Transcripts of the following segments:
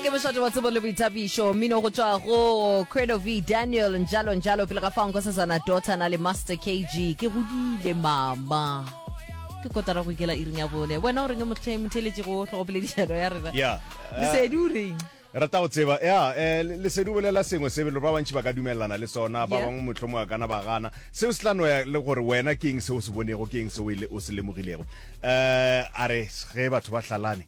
ke mošate wa tsebo le boithabišo mmino go tšwa go credo v daniel njalo njalo pele ga fa nko sesana dota na le master kg ke godile mama ke kotara go ikela iring ya bone wena o reng e motlhe- motheletše go tlhogopoledišano ya rena Yeah. lesedi o reng rata go tseba ya eh, le- lesedi o bolela sengwe se belo ba bantši ba ka dumelelana le sona ba Yeah. bangwe motlho mo a kana ba gana seo se tla no ya le gore wena ke eng se o se bonego ke eng se o ile- o se lemogilego um a re ge batho ba hlalane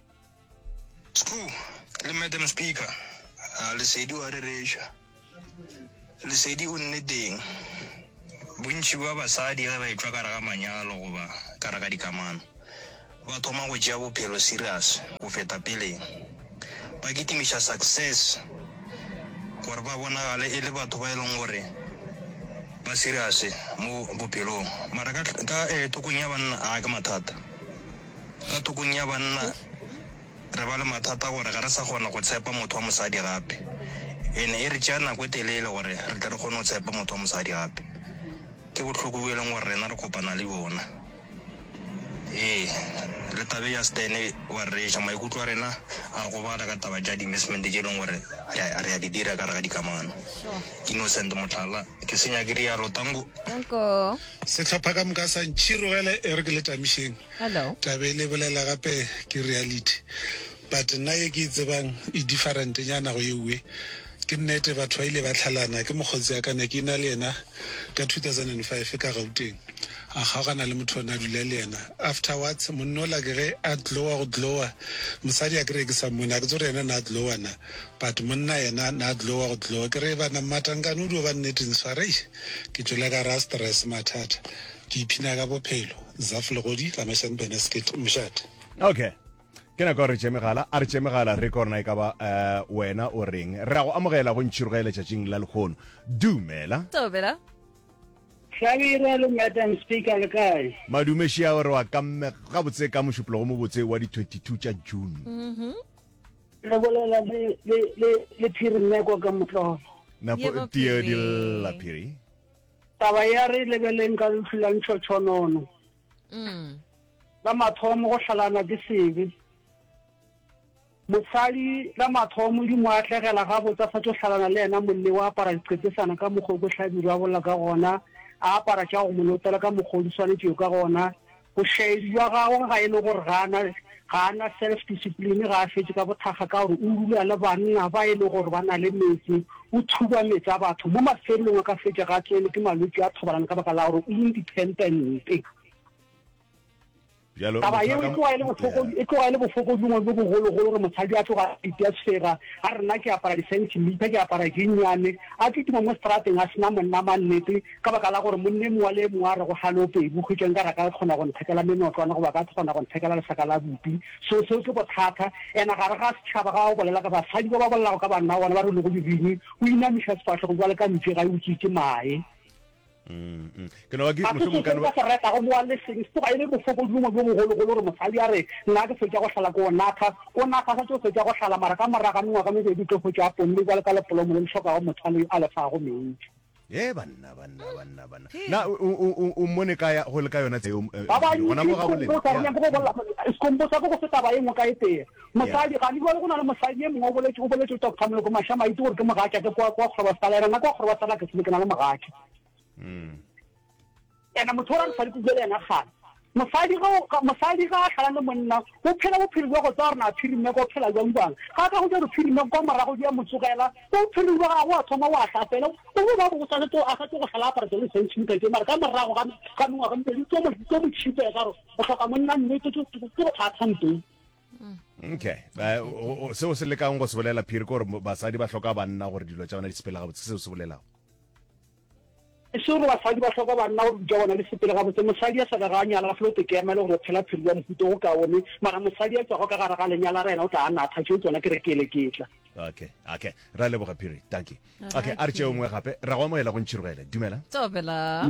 Skhoo le Madam Speaker, a Lesedi o a rereša. Lesedi o nneteng. Bontši ba basadi ge ba etšwa ka re ga manyalo goba ka re ga dikamano, ba thoma go tšea bophelo serious go feta peleng. Ba kitimiša success gore ba bonagale e le batho ba e leng gore ba serious mo bophelong. Mara ka, ka eh, thokong ya banna, a ke mathata. Ka thokong ya banna, re ba le mathata gore ga re sa kgona go tshepa motho wa mosadi gape. E ne e re tšea nako e telele gore re tle re kgone go tshepa motho wa mosadi gape. Ke bohloko bjo e leng gore rena re kopana le bjona. Ee, le taba e ya Stan e wa re reša. Maikutlo a rena a gobala ka taba tša di-investment tše e leng gore re a, re a di dira ka gare ga dikamano. Innocent, mohlala, Ke se nyake realo, Tanko. Sehlopha ka moka sa ntšhirogela e re ke le tamišeng. Hello. Taba e le bolela gape ke reality. But nna ye ke e tsebang e different nyana go ye uwe. Ke nnete batho ba ile ba tlhalana ke mokgotsi ya ka ne ke ena le yena ka 2005 ka Gauteng. A kgaogana le motho o ne a dula le yena. Afterwards monna ola ke ge a glower go glower mosadi a ke re ke sa mmone a ke tsebe gore yena ne a glower na but monna yena ne a glower go glower ke re bana mmatangkane o dio ba nneteng swara eish. Ke tšwele ka ra stress mathata ke iphina ka bophelo Zaf Legodi Ramashane Benesket Mshat. Ok ke nako ya gore re tšee megala a re tšee megala re korna e ka ba um wena o reng re a go amogela go ntšhiroge letšatšing la lekgono dumela Thobela. Hlabirwa le Madam Speaker le kae? Madume Shiawe re wa kamme gabotse ka mošupologo mobotse wa di 22 tša June. re bolela le phiri mmeko ka motlolo napo tio di lla phiri taba ya re lebeleng ka lehu la ntšhotšhonono mm. la mathomo go hlalana ke sebe mosadi la mathomo di mo atlegela ga botsa fa tso hlalana le yena molle o apara diqetsesana ka mokgwa o ko hlabirwa bolla ka gona a apara tša go molotela ka mokgwa o di swanetšeo ka gona Bošaedi bja gagwe ga e le gore ga a na, ga a na self-discipline, ga a fetše ka bothakga ka gore o dula le banna ba e le gore ba na le meetse, o thuba meetse a batho, mo mafelelong a ka fetša ga a tsenwe ke malwetši a thobalano ka baka la gore o independente. Bjalo, Taba motho a yeo e ka. tloga e le bofokodi, Yeah. e tloga e le bofokodi bongwe bjo bogologolo gore mosadi a tloga a itia sefega, a re nna ke apara di-centimetre, ke apara dinnyane, a tlo tuma mo strateng a sena monna mannete, Ka baka la gore monna e mongwe le e mongwe a re go halo pedi, hwetša nkare a ka kgona go nthekela menotlwana goba a ka kgona go nthekela lesaka la bupi. So, seo ke bothata. Ena gare ga setšhaba, ga o bolela ka basadi ba ba bolelago ka banna ba bona, ba re o lego dibini, o inamiša sefahlogo bjale ka mpše ga e utswe ke mae. Mm, mm. ke no ba ke ga se mohlomong ka seseng no ka ba se retago mowa le seng se tloga e le bofokodi bongwe bjo bogologolo gore mosadi a re nna ke fetša go hlala ke o natha o natha sa tso fetša go hlala mara ka moraga mengwaga mebedi o tlo hwetša a ponne bjale ka lepolomo le le hlokago motho a le a lefago meetši e banna banna banna banna na o mmone ka ya go le ka yona tseo eh, ba ba ni gona mo ga boleng go tsara go bolla skombo sa go go feta ba engwe ka e tee mosadi ga ni go na le mosadi e mongwe o boletse o boletse o tokutsa molo go masha maitse gore ke mogatša ke kwa kwa go ba sala rena kwa go ba sala ke se ke na le mogatša mm ena motho o ra mosadi ko buele ena gana mosadi ga mosadi ga a tlhala le monna o phela bophelo jwa go tsaya gore na phirime go phela jwang jwang ga a ka go ja gore phirime kwa morago di ya mo tsogela o bophelo jwa gago a thoma o a tlapela o bo ba bo sa tlo a sa tlo go tlhala apara tsone se ntshimo ka tse mara ka morago ga ga mongwe ga mme tso mo tso mo tshipe ka go o tlhoka monna mme tso tso tso go tla tsampe okay ba o se o se lekang go se bolela phiri gore basadi ba tlhoka banna gore dilo tsa bona di sepela ga botse se o se bolelago E se gore basadi ba hloka banna gore dintwa bona di sepele gabotse. Mosadi ya sa bego a nyala a felo teke ya mele gore o phela phelo bja mohuto go ka one, mara mosadi ya tšwago ka gare ga lenyala re yena o tla a natha. Tšeo tsona ke rekeeleketla. Okay, okay. Ra leboga Phiri. Dankie. Okay, a re tšeo nngwe gape. Ra go amohela go ntšhirogele. Dumela. Tsopela.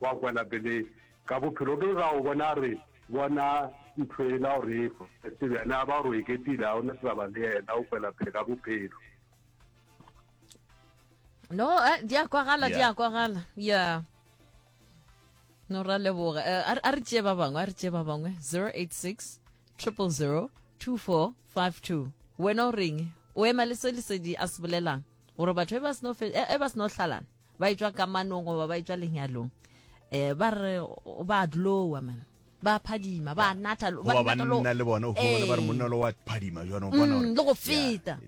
Gwa kwela pele ka bophelo ke ga o bona re bona nthoela o re efa se bjana ba ro eketile a ona taba le yena o kwela pele ka bophelo no eh, di a kwagala di a kwagala ya no ra leboga eh, a re tšee ba bangwe a re tšee ba bangwe 086 000 2452 wena o reng o ema le se lesedi a se bolelang gore batho e ba seno e ba seno hlalana ba etšwa kamanong goba ba etšwa lenyalong um ba re ba dlowa man ba phadima ba natha goba banna le bona o fumana ba re monna lo wa phadima jwana o bona mm, le go feta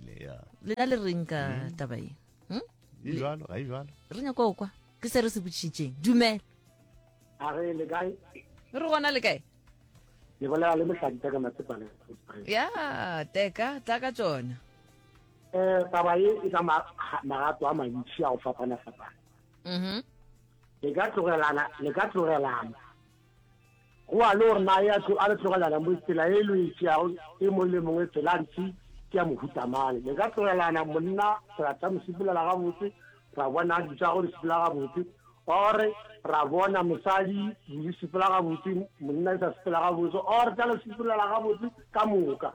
lena le reng ka mm. taba e hmm? e jalo ga e jalo re nyako kwa ke se re se botšhitšeng dumela a re le kae re gona le kae le bolela le mohlakita ka matsepale ya teka tla ka tsona Eh, taba ye e ka magato a mantši a go fapana-fapana mm-hmm. le ka tlogelana le ka tlogelana go a le gore na ya tlo a le tlogelana mo tsela e lo itšeago e mong le mongwe tsela ntsi ke ya mohutamane le ka tlogelana monna ra tla mo sepulela gabotse ra bona di tsa go di sepela gabotse ore ra bona mosadi di sepela gabotse monna e sa sepela gabotse ore tla le sepulela gabotse ka moka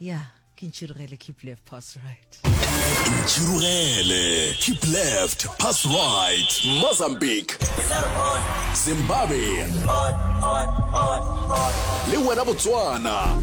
ya ke ntšhirogele keep left pass right ntšhirogele keep left pass right mozambique zimbabwe le wena botswana